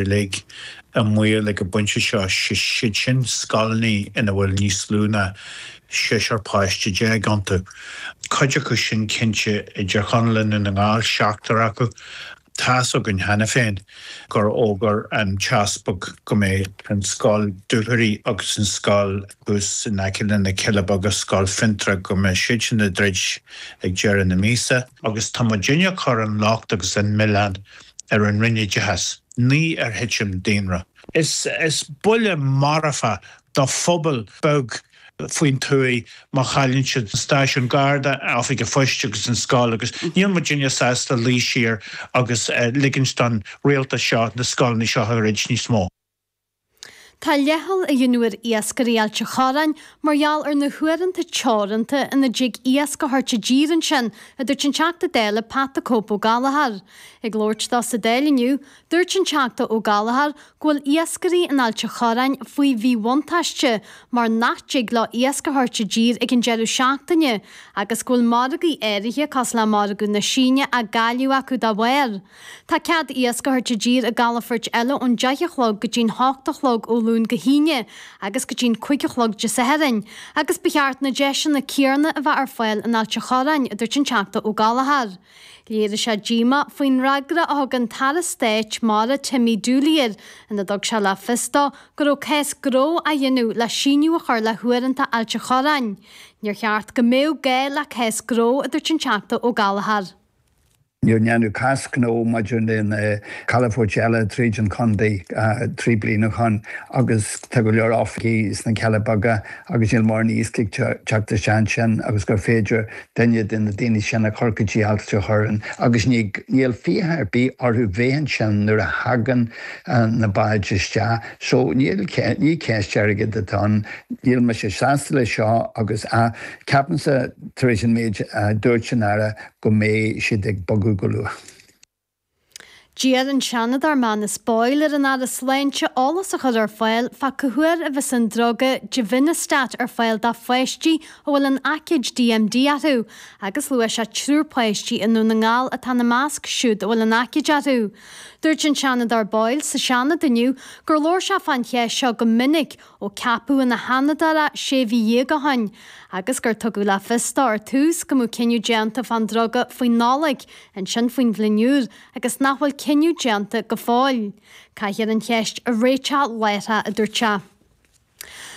uilig i mbaol ag an phointe seo, is iad sin scoileanna ina bhfuil níos lú ná seisear páiste déag iontu. Cuid acu sin cinnte i dTír Chonaill i nDún na nGall, seachtar acu. Tá's againn cheana féin gur fhógair an tEaspag go mbeidh an scoil Dúthraí agus an scoil thuas in aice le na Cille Beaga, Scoil Fionntrá, go mbeidh siad sin ag druid ag deireadh na míosa. Agus tá muid inniu ag cur an locht agus an milleán ar an Roinn Oideachais, ní ar thitim daonra. Is buille marfa do phobal beag faoin tuaith má chailleann siad an stáisiún Garda, oifig an phoist agus an scoil agus níl muidinne sásta luí siar agus ligint don rialtas seo na scoileanna seo a dhruid níos mó. Tá leithcheal á dhéanamh ar iascairí Ailt an Chorráin mar gheall ar na huaireanta teoranta ina dtig iasc a thabhairt i dtír ansin, a dúirt an Teachta Dála Pat the Cope Ó Gallachóir. Ag labhairt dó sa Dáil inniu, dúirt an Teachta Ó Gallachóir go bhfuil iascairí in Ailt an Chorráin faoi mhíbhuntáiste mar nach dtig leo iasc a thabhairt i dtír ag an deireadh seachtaine agus go bhfuil margaí áirithe, cosúil le margadh na Síne, á gcailleadh acu dá bharr. Tá cead iasc a thabhairt i dtír i gcalafoirt eile ón deich a chlog go dtí'n hocht a chlog ó Luan go hAoine agus go dtí'n cúig a chlog Dé Sathairn, agus ba cheart na deiseanna céanna a bheith ar fáil in Ailt an Chorráin, a dúirt an Teachta Ó Gallachóir. Léirigh sé díomá faoin fhreagra a thug an tAire Stáit Mara Timmy Dooley air ina dtug sé le fios dó go raibh cás gnó á dhéanamh le síneadh a chur le huaireanta Ailt an Chorráin. Níor cheart go mbeadh gá le cás gnó, a dúirt an Teachta Ó Gallachóir. Níor déanadh cás gnó maidir le na calafoirt eile tríd an chontae trí bliana ó shoin agus tá go leor oifigigh sna Cealla Beaga agus níl mórán iasc ag teacht isteach ansin agus gur féidir duine de na daoine sin a chur go dtí Ailt an Chorráin agus níl fiacha ar bith orthu bheith ansin nuair a thagann na báid isteach so níl, ní ceist airgid atá ann. Níl mise sásta le seo agus ceapaimsa tar éis an méid a dúirt an tAire go. go mbeidh siad ag bogadh go luath. D'iarr an Seanadóir Manus Boyle ar an Aire Sláinte eolas a chur ar fáil fá cá huair a bheas an druga Givinostat ar fáil do pháistí a bhfuil an aicíd DMD orthu agus luaigh sé triúr páistí i nDún na nGall atá ina measc siúd a bhfuil an aicíd orthu. Dúirt an Seanadóir Boyle sa Seanad inniu gur labhair sé fán cheist seo go minic Ó ceapadh ina Sheanadóir é sé mhí dhéag ó shin agus gur tugadh le fios dó ar tús go mbeadh cinneadh déanta fán druga faoin Nollaig, ansin faoin bhliain úr agus nach bhfuil cinneadh déanta go fóill. Caithfear an cheist a réiteach láithreach, a dúirt sé.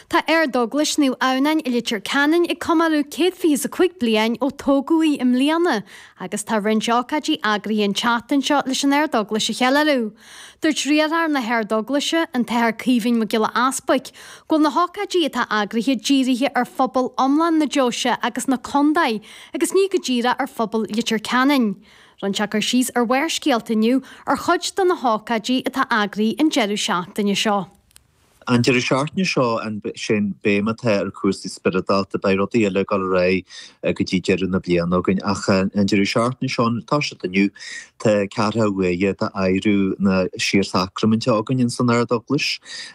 Tá Ardeaglais Naomh Adhamhnán i Leitir Ceanainn ag comóradh céad fiche is a cúig bliain ó tógadh í i mbliana agus tá roinnt ócáidí eagraithe an tseachtain seo leis an Ardeaglais a cheiliúradh, Dúirt riarthóir na hArdeaglaise, an tAthair Caoimhín Mac Giolla Easbuic, go bhfuil na hócáidí atá eagraithe dírithe ar phobal iomlán na deoise agus na contae agus ní go díreach ar phobal Leitir Ceanainn. Rinne sé cur síos ar Bharrscéalta inniu ar chuid de na hócáidí atá eagraithe an deireadh seachtaine seo. An deireadh seachtaine seo sin béim atá ar chúrsaí spioradálta. Beidh rudaí eile ag dul ar aghaidh go dtí deireadh na bliana againn ach an deireadh seachtaine seo ag toiseacht inniu tá ceathracha uair d'adhradh na síorshacraiminte againn insan Ardeaglais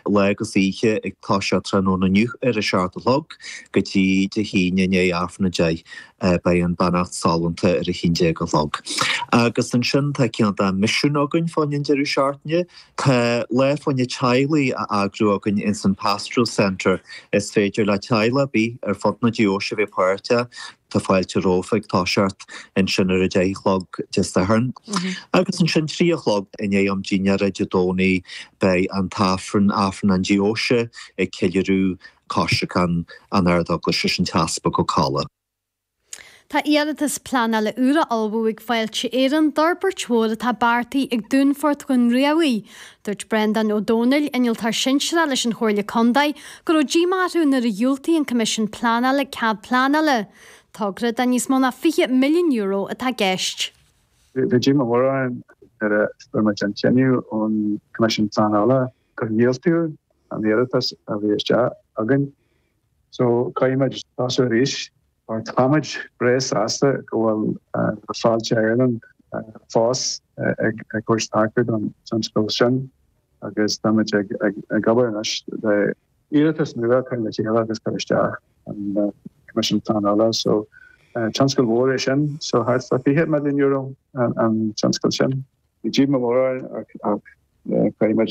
lá agus oíche ag toiseacht tráthnóna inniu ar a seacht a chlog go dtí Dé hAoine i ndiaidh Aifreann a deich beidh an beannacht sollúnta ar a haon déag a chlog agus ansin tá ceann dá misiún againn fán deireadh seachtaine Tá lá fóraim teaghlaigh á eagrú againn ins an Pastoral Centre. Is féidir le teaghlach ar bith ar fud na deoise bheith páirteach. Tá fáilte rompu ag toiseacht ansin ar a deich a chlog Dé Sathairn. Agus ansin trí a chlog i ndiaidh am dinnéara Dé Domhnaigh beidh an tAifreann, Aifreann na Deoise, ag ceiliúradh coisreacan na hArdeaglaise leis an tEaspag Ó Cadhla. Tá iarratas pleanála úr á ullmhú ag Fáilte Éireann d'fhorbairt mhór atá beartaithe ag Dúnfort Dhún Riabhaigh. Dúirt Breandán Ó Dónaill, Innealtóir Sinsearach leis an Chomhairle Contae, go raibh díomá orthu nuair a dhiúltaigh an Coimisiún Pleanála cead pleanála. Togra de níos mó ná €20 milliún atá i gceist. Bhí díomá mhór orainn nuair a fuair muid an cinneadh ón gCoimisiún Pleanála gur dhiúltaigh an iarratas a bhí isteach againn. So, caithfimid tosú arís. Mar táimid breá sásta go bhfuil Fáilte Éireann fós ag tabhairt taca don tionscal sin agus táimid ag obair anois le iarratas nua a chur le chéile agus cur isteach chun na Coimisiún Pleanála. So, tionscal mhór é sin. So, thart fá €20 milliún an tionscal sin. Bhí díomá mór orainn ach caithfimid.